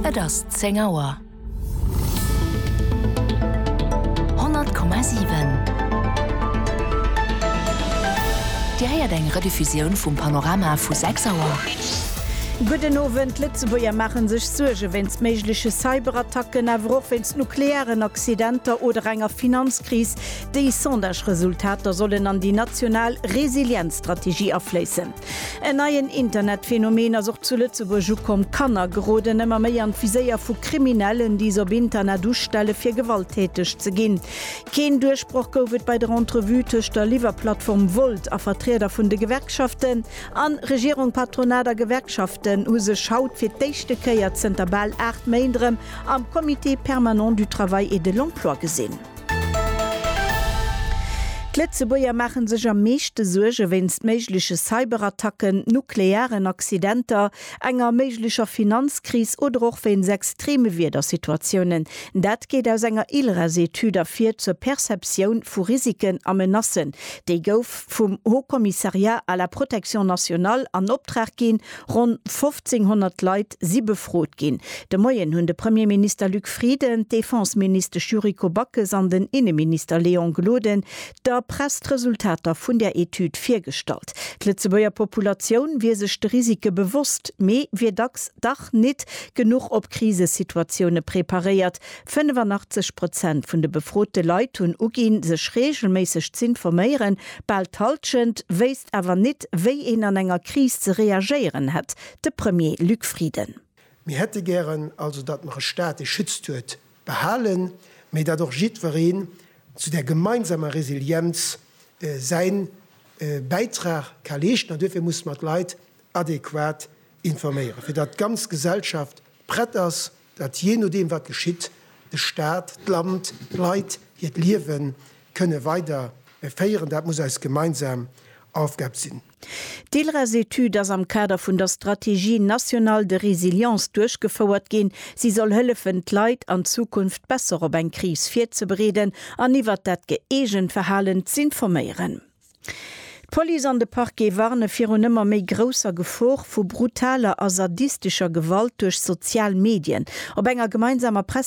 Et ass zéng Auer. 100,7 Dir héiert eng Rediffusioun vum Panorama vu 6 Auer. Gudden Owend, D'Lëtzebuerger maache sech Suerge wéinst méigleche Cyberattacken, awer och wéinst nuklearen Accidenter oder enger Finanzkris. Déi Sondage-Resultater sollen an déi national Resilienzstrategie afléissen. En neien Internetphänomen ass och zu Lëtzebuerg ukomm, D'Kanner geroden ëmmer méi an d'Viséier vu Kriminellen, déi s'op Internet ustelle fir gewalttäteg ze ginn. Keen Duerchbroch gouf et bei der Entrevue tëscht der Liwwerplattform Wolt a Vertrieder vun de Gewerkschaften. An Regierung, Patronat a Gewerkschaften hu sech haut fir d'éischte Kéier zënter bal 8 Méint erëm am Comité permanent du travail et de l'emploi gesinn. D'Lëtzebuerger maache sech am meeschte Suerge wéinst méigleche Cyberattacken, nuklearen Accidenter, enger méiglecher Finanzkris oder och wéinst extreme Wiedersituatiounen. Dat geet aus enger ILRES-Etüd ervir zur Perceptioun vu Risiken a Menacen. Déi gouf vum Haut Commissariat à la protection nationale an Optrag ginn, Ronn 1.500 Leit si befrot ginn. De Moien hunn de Premierminister Luc Frieden, d'Defenseministesch Yuriko Backes an den Inneminister Léon Gloden der Press d'Resultater vun där Etüd virgestallt. D'Lëtzebuerger Populatioun wier sech de Risike bewosst, mee wier dacks dach nit genuch op Krisesituatioune preparéiert, 85 Prozent vun de befrote Leit hunn uginn, sech reegelméisseg z'informéieren. Bal d'Halschent wéisst awer nit, wéi een an enger Kris ze reagéieren hätt. De Premier Luc Frieden. Mir hätte gären also, datt mer e Staat, dee schützt, huet behalen, mee datt och jiddwereen zu där gemeinsamer Resilienz säi Bäitrag ka leeschten. An duerfir musse mer d'Leit adequat informéieren, fir datt d'ganz Gesellschaft prett ass, datt jee nodeem wat geschitt, de Staat, d'Land, d'Leit hiert Liewe kënne weider féieren. Dat muss eis gemeinsam Aufgab sinn. D'ILRES-Etüd ass am Kader vun der Stratégie nationale de résilience duerchgefouert ginn. Si soll hëllefen, d'Leit an Zukunft besser op eng Kris virzebereeden an iwwert dat gëeegent Verhalen z'informéieren. D'Police an de Parquet warne virun ëmmer méi grousser Gefor vu brutaler a sadistescher Gewalt duerch sozial Medien. Op enger gemeinsamer